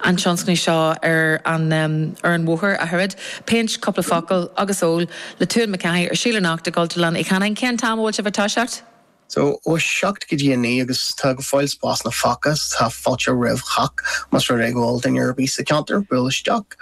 an tionscnaimh seo ar an ar an bhóthar, a chairde. Péint, cúpla focal agus ól le Tuan Mac Cathaigh ar siúl anocht i gCultúrlann Uí Chanáin. Cén t-am a bhfuil sibh ag toiseacht? So, ó a seacht go dtí a naoi agus tá go fóill spásanna fágtha agus tá fáilte roimh chách más rud é go bhfuil duine ar bith sa cheantar buail isteach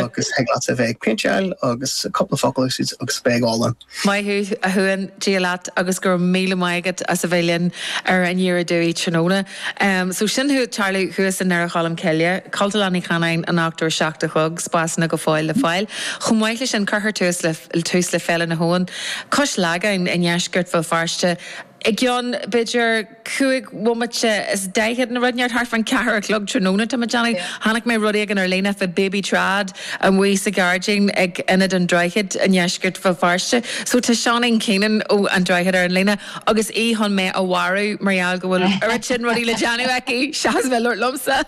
agus thig leat a bheith ag péinteáil agus cúpla focal agus beidh álainn. Maith thú, a Thuain, Dia leat agus go raibh míle maith agat as a bheith linn ar An Ndéarfá Dúinn tráthnóna. So sin ag tarlú thuas i nDoire Cholm Cille, Cultúrlann Uí Chanáin, anocht ar a 7 a chlog, spásanna go fóill le fáil. Chomh maith leis sin cuirfear tús le tús le Féile na hAbhann, cois Lagáin i ndeisceart Bhéal Feirste, i gceann b'fhéidir, cúig bhomaite is daichead nó rud, thart fan ceathair a chlog tráthnóna, tá mé ag déanamh, chonaic mé rud éigin ar líne fá Baby Trad amuigh sa ghairdín ag Ionad an Droichid i ndeisceart Bhéal Feirste. So tá Seáinín Keenan ó An Droichead ar an líne agus í chun mé a mharú mar gheall go bhfuil oiread sin rudaí le déanamh aici seachas bheith ag labhairt liomsa.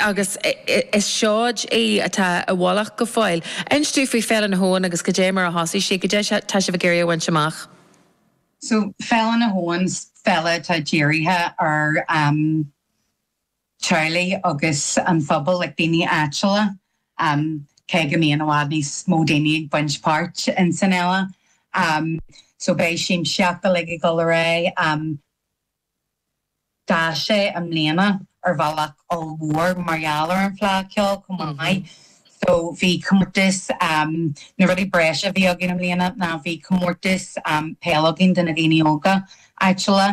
agus is seoid í atá i bhfolach go fóill. Inis dúinn faoi Féile na hAbhann agus go dté mar a thosaigh sí, go dté tá sibh ag iarraidh a bhaint amach. So, Féile na hAbhann, féile atá dírithe ar teaghlaigh agus an phobal, like daoine áitiúla, cé go mbíonn i bhfad níos mó daoine ag baint páirt in san fhéile. So beidh siamsaíocht uilig ag dul ar aghaidh. D'fhás sé i mbliana ar bhealach ollmhór mar gheall ar an bhFleá Ceoil chomh maith. So bhí comórtas, na rudaí breise a bhí againn i mbliana ná bhí comórtas peil againn do na daoine óga áitiúla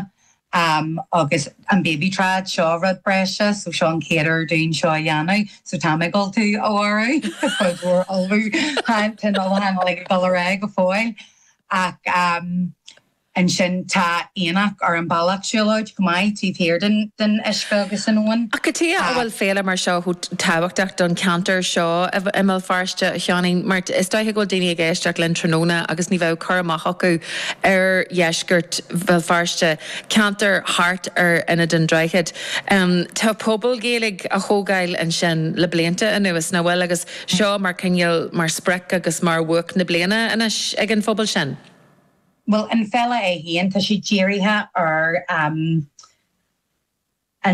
agus an Baby Trad, seo rud breise so seo an chéad uair dúinn seo a dhéanamh so tá mé ag dul tú a mharú, ag ullmhú, tá an ullmhúchán uilig ag dul ar aghaidh go fóill ach. Ansin tá aonach ar an bhealach siúlóid chomh maith, taobh thiar den uisce agus an abhainn. Cad chuige a bhfuil féile mar seo chomh tábhachtach don cheantar seo i mBéal Feirste, a Sheáinín? Mar is dóiche go bhfuil daoine ag éisteacht linn tráthnóna agus ní bheadh cur amach acu ar dheisceart Bhéal Feirste, ceantar thart ar Ionad an Droichid. Tá pobal Gaeilge á thógáil ansin le blianta anuas, nach bhfuil? Agus seo mar chineál, mar sprioc agus mar bhuaic na bliana anois ag an phobal sin. Bhuel an fhéile é féin, tá sé dírithe ar an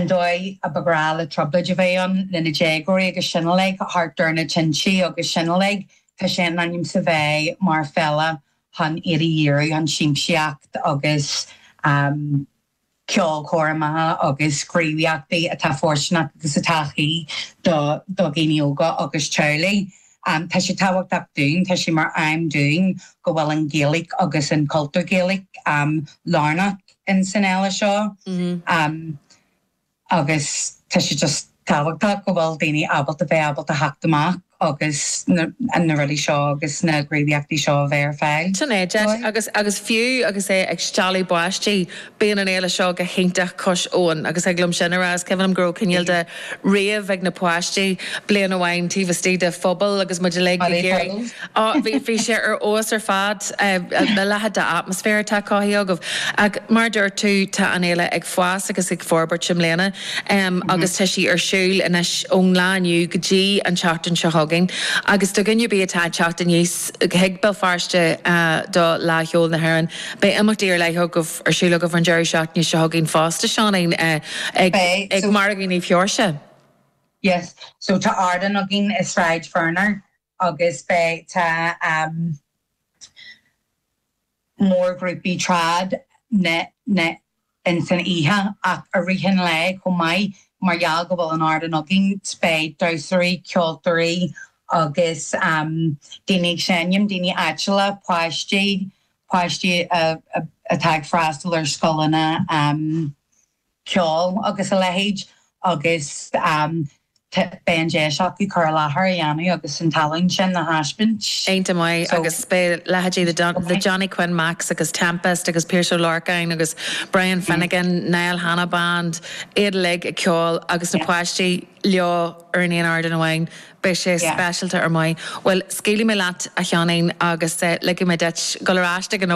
dóigh ar ba ghnách le trioblóid a bheith ann le na déagóirí agus sin uilig thart ar na tinte agus sin uilig. Tá sé in ainm is a bheith mar fhéile chun iad a dhíriú chun siamsaíocht agus. ceolchoirmeacha agus gníomhaíochtaí atá fóirsteanach agus atá cuí do dhaoine óga agus teaghlaigh. Tá sé tábhachtach dúinn, tá sé mar aidhm dúinn go bhfuil an Ghaeilge agus an cultúr Gaelach lárnach ins an fhéile seo. agus tá sé just tábhachtach go bhfuil daoine ábalta bheith ábalta theacht amach agus na rudaí seo agus na gníomhaíochtaí seo a bheith ar fáil Sin é, deis dóibh. agus agus fiú agus é ag stealladh báistí, bíonn an fhéile seo go hiontach cosúil agus thig liom sin a rá, is cuimhin liom go raibh cineál de rave ag na páistí bliain amháin taobh istigh de phuball agus muid uilig ag gáire. Á, bhí, bhí sé ar fheabhas ar fad, a leithéid d'atmaisféar atá cothaithe agaibh. Ach mar a dúirt tú, tá an fhéile ag fás agus ag forbairt i mbliana agus tá sí ar siúl anois ón lá inniu go dtí an tseachtain seo chugainn. Agus do dhuine ar bith atá ag teacht aníos chuig Béal Feirste do Fhleadh Cheoil na hÉireann, beidh imeachtaí ar leith agaibh, ar siúl agaibh an deireadh seachtaine seo chugainn fosta, Seáinín, ag, Beidh, ag Margadh Naomh Sheoirse. Yes, so tá ardán againn i Sráid Ferner agus beidh tá um mórghrúpaí trad ann ann in san oíche ach i rith an lae chomh maith mar gheall go bhfuil an t-ardán againn beidh damhsóirí, ceoltóirí agus daoine ag seinm, daoine áitiúla, páistí, páistí atá ag freastal ar scoileanna. ceol agus a leithéid agus beidh an deis acu cur i láthair a dhéanamh agus an tallann sin a thaispeáint. Iontach maith agus beidh leithéidí The Johnny Quinn Macs agus Tempest agus Piaras Ó Lorcáin agus Brian Finnegan, Niall Hanna Band, iad uilig ag ceol agus na páistí leo ar an aon ardán amháin, beidh sé speisialta. Ar maith. Bhuel, scaoilfidh mé leat a Sheánain agus ligfidh mé duit dul ar ais ag an obair.